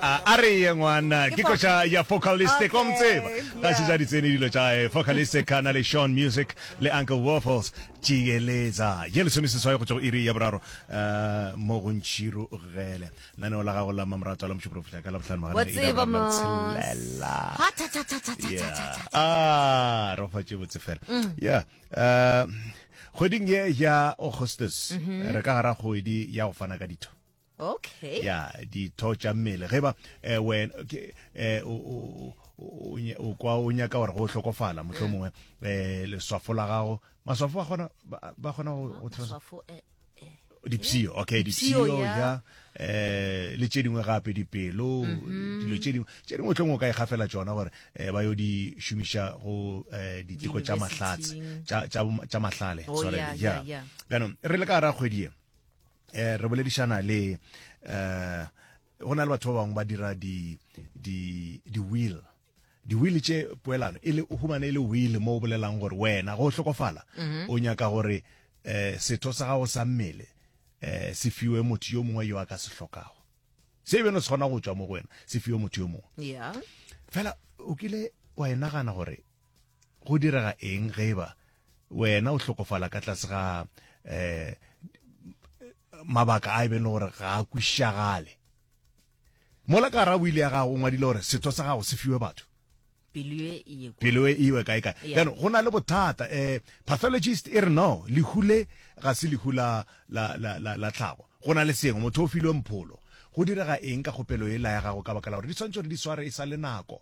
A a re ye ngwana ke koša ya Focalistic wa mo tseba ga se ja ditsene dilo tša hae Focalistic a na le Sean Music le Uncle Waffles tšieletsa ye lesomeseswai go tšwa go iri ya boraro mo go ntšhiru gele lenaneo la gago la mamoratwa la motšhoporo fihla ka labohlano magana a iri ya boraro le tshelela yeah a re fa tše botse fela yeah uh kgweding ye ya Augustus re ka gara kgwedi ya go fana ka ditho okay ya ditho tša mmele ge ba eh, wen ke eh, o- o- o- o nya- o kwa o nyaka gore go hlokofala motlho mongwe eh, leswafo la gago maswafo a kgona ba ba kgona go go tshela- Maswafo, eh, dipshio okay Dipshio, dipshio ya. ya eh le tše dingwe gape dipelo Mhm. dilo tše dingwe tše dingwe tlong o ka e gafela tsona gore eh, ba yo di šomiša go eh, diteko tša mahlatse Diyunibesithing. tša- tša tša mahlale Oh, sorry, yeah, yeah, yeah. bjanong re le ka gara kgwedi ye Eh, re boledišana le eh go na le batho ba bangwe ba dira di di di will di will tše poelano e le humane e le will mo o bolelang gore wena go hlokofala mhm. o nyaka gore eh setho sa gago sa mmele eh se fiwe motho yo mongwe yo a ka se hlokago se e beno se kgona go tswa mo go wena se fiwe motho yo mongwe yeah fela o kile wa e nagana gore Go direga eng ge eba wena o hlokofala ka tlase ga um mabaka a e beng le gore ga a kwišagale? Mola ka gara wili ya gago o ngwadile gore setho sa gago se fiwe batho. Pelo e iwe kae kae. Jaanong go na le bothata. Um pathologist e re no, lehu le ga se lehu la tlhago. Go na le sengwe, motho o filwe mpholo. Go direga eng ka kgopelo ela ya gago ka baka la gore di swanetše gore di sware e sa le nako?